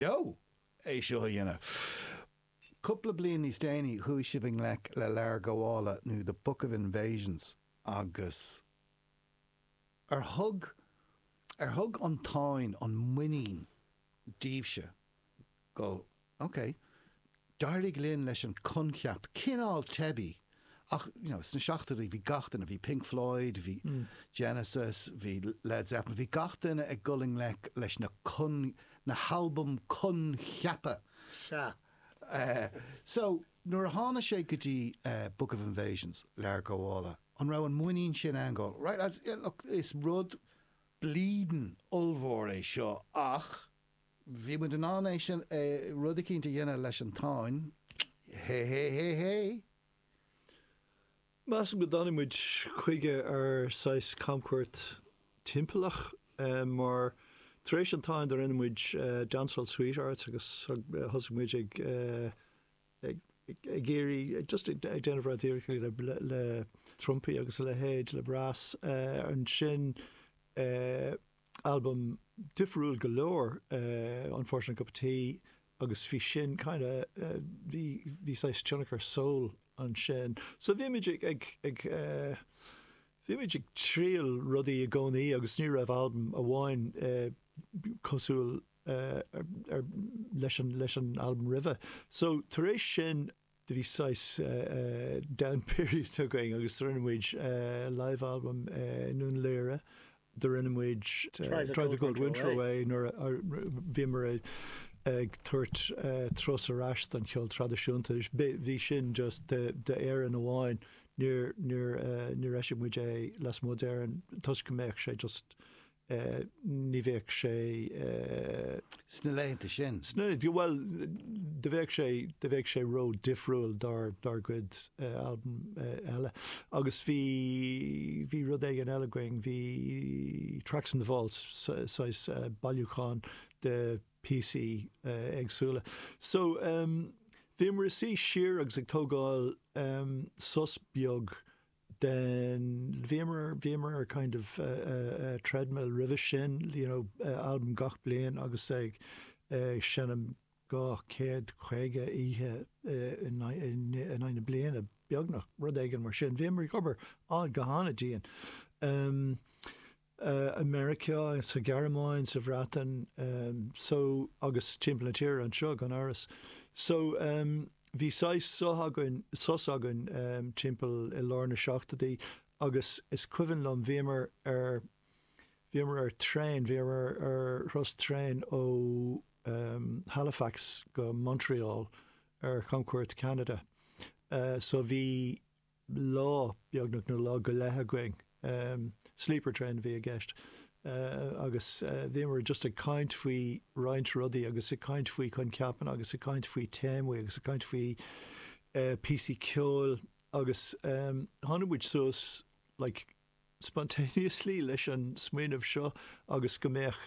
beo é seo a dhéanamh. Cúpla bliain níos déanaí chuaigh sibh i ngleic le Leabhar Gabhála nó The Book of Invasions agus ar thug, ar thug an Táin an muinín daoibhse go, okay, d'éirigh linn leis an coincheap cineál teibí ach you know sna seachtóidí bhí gach duine, bhí Pink Floyd, bhí Genesis, bhí Led Zeppelin, bhí gach duine ag dul i ngleic leis na na halbaim coincheapa seo eh so nuair a tháinig sé go dtí eh Book of Invasions, Leabhar Gabhála, an raibh an mhuinín sin ann go right lads eh look is rud bleedin ollmhór é seo ach, Bhí muid in ann é sin, é, rud eicínt a dhéanamh leis an Táin, hé hé hé hé! Measaim go dtáinig muid chuige ar saghas camchuairt timpeallach mar tar éis an Táin do rinne muid Dance Hall Sweethearts agus thosaigh muid ag ag iarraidh just ag déanamh rud díreach le trumpaí agus a leithéid, le brass. Ansin eh. albam difriúil go leor, Unfortunate Cup of Tea agus bhí sin kind of, bhí, bhí saghas tionchar soul ansin. So bhímid ag, ag, ag eh, bhímid ag triail rudaí i gcónaí agus ní raibh albam amháin cosúil ar, ar, leis an, leis an albam roimhe. So tar éis sin, do bhí saghas down period againn agus do rinne muid live album i nDún Laoghaire, do rinne muid Drive the Cold Winter Away nuair a bhíomar ag tabhairt tribute ar ais don cheol traidisiúnta, bhí sin just d'Éirinn amháin, níor eisigh muid é lasmuigh d'Éirinn toisc go mbeadh sé just ní bheadh sé. Sna laethanta sin. Sna, bhuel, do bheadh sé, do bheadh sé ró-difriúil dár, dár gcuid albaim eile. Agus bhí, bhí rud éigin eile againn, bhí Tracks from the Vaults, saghas bailiúchán de píosaí éagsúla. So, bhíomar ag suí siar agus ag tógáil sos beag den, bhíomar, bhíomar ar kind of treadmill roimhe sin, you know albam gach bliain agus ag seinm dhá chéad caoga oíche in aghaidh na bliana beagnach, rud éigin mar sin. Bhíomar ag obair go han-dian. i Meiriceá, sa Ghearmáin, sa Bhreatain, so agus timpeall na tíre anseo, gan amhras. So, bhí saghas sos againn, sos againn timpeall i lár na seachtóidí agus is cuimhin liom, bhíomar ar, bhíomar ar traein, bhíomar ar thuras traein ó Halifax go Montreal ar chamchuairt Cheanada. So, bhí, lá, beagnach, nó lá go leith againn. Sleeper train a bhí i gceist. Agus bhíomar just ag caint faoi roinnt rudaí agus ag caint faoi choincheapanna agus ag caint faoi téamaí agus ag caint faoi phíosaí ceoil agus tháinig muid suas, like, spontaneously leis an smaoineamh seo agus go mbeadh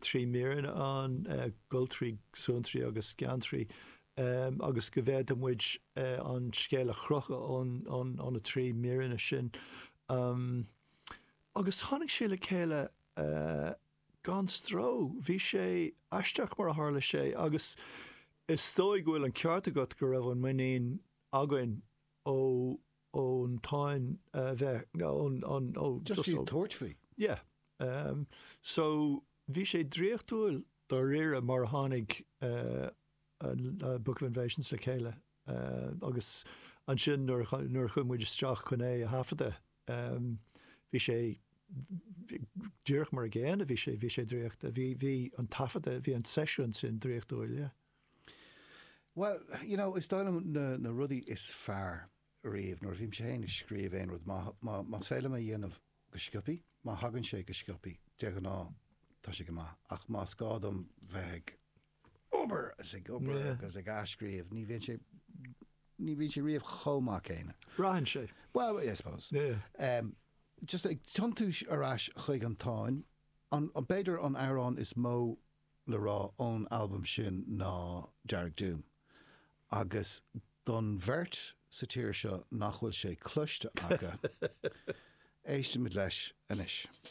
trí míreanna ann, Goltraí, Suantraí agus Geantraí, agus go bhféadfadh muid an scéal a chrochadh ó na trí míreanna sin. Agus tháinig sé le chéile gan stró. Bhí sé aisteach mar a tharla sé agus is dóigh go bhfuil an ceart agat go raibh an muinín againn. ó ón Táin a bheith, ón, ón, ó, Just just iad ó, tabhairt faoi. yeah. Um, so, bhí sé draíochtúil dáiríre mar a tháinig eh, an eh, Book of Invasions le chéile eh, agus ansin nuair a cha- nuair a chuaigh muid isteach chun é a thaifeadadh em, bhí sé, bhí, díreach mar a gcéanna bhí sé, bhí sé draíochta, bhí, bhí an taifeadadh, bhí an seisiún sin draíochtúil, yeah. Bhuel, you know, is dóigh liom na rudaí is fearr riamh nuair a bhímse féin ag scríobh aon rud, más féidir liom é a dhéanamh go sciopaí, má thagann sé go sciopaí, de ghnáth, tá sé go maith, ach más gá dom bheith ag obair is ag obair agus ag athscríobh, ní bhíonn sé, ní bhíonn sé riamh chomh maith céanna. Braitheann sé. Bhuel, I suppose. Just ag tiontú ar ais chuig an Táin, b'fhéidir an amhrán is mó le rá ón albam sin ná Dearg Doom, agus don bheirt sa tír seo nach bhfuil sé cloiste acu, éistfimid leis anois.